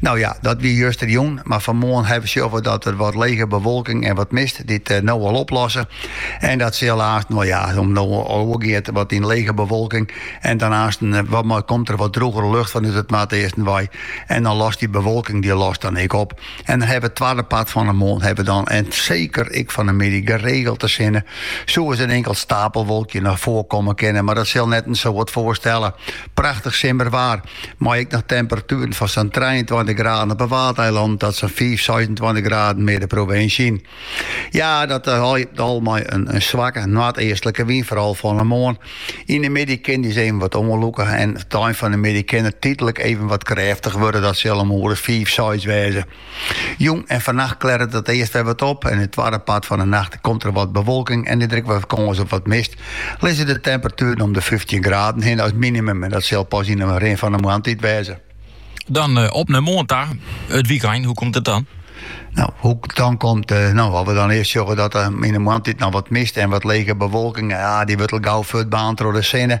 No ja, dat wie justerjûn, mar fan moarn ha we sjoen dat der wat lege bewolking en wat mist dy't no al oplosse. En dat sil aanst, no ja, en no al oergiet wat yn lege bewolking en dan aanst komt der wat drûgere lucht fanút it noardeasten wei en dan lost dy bewolking dy lost dan ek op. En dan ha we it twadde part fan 'e moarn ha we dan, en seker ek fan 'e middei, geregeld de sinne. Sa sil ris in inkeld stapelwolkje noch foarkomme kinne, mar dat sil net in soad foarstelle. Prachtich simmerwaar. mei ek noch temperatueren fan sa'n trijeentweintich graden op 'e Waadeilannen oant sa'n fiif, seisentweintich graden mear de provinsje yn. Ja, dat eh, al mei in, in swakke noardeastlike wyn, foaral fan 'e moarn. Yn 'e middei kin dy wyn even wat oanlûke en tsjin 'e ein fan 'e middei kin it tydlik even wat krêftich wurde, dat sil om in oere as fiif, seis wêze. Jûn en fannacht klerret it earst wer wat op en yn it twadde part fan 'e nacht komt der wat bewolking en is der ek wat kâns op wat mist. Lizze de temperatueren om de fyftjin graden hin as minimum en dat sil pas yn 'e rin fan 'e moarntiid wêze. Dan op nei moarn ta, it wykein, hoe komt it dan? Nou, hoe dan komt, eh, nou, as we dan earst sjogge dat der yn de moarntiid noch wat mist en wat lege bewolking, ja, dy wurdt al gau fuortbaarnd troch de sinne.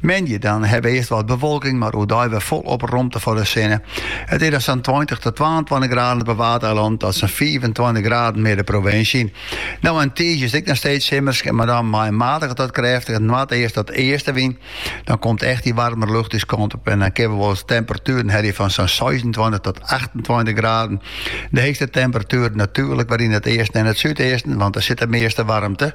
Moandei dan hawwe we earst wat bewolking, mar oerdei wer folop romte foar de sinne. It is dan sa'n tweintich tot twaentweintich graden op 'e Waadeilannen tot sa'n fiifentweintich graden mear de provinsje yn. No en tiisdei is it ek noch steeds simmersk, mar dan mei in matige tot krêftige noardeast- oant eastenwyn. Dan komt echt dy waarmere lucht ús kant op en dan kinne we wolris temperatueren hawwe fan sa'n seisentweintich tot achtentweintich graden. De heechste temperatueren natuerlik wer yn it easten en it súdeasten, want dêr sit de measte waarmte.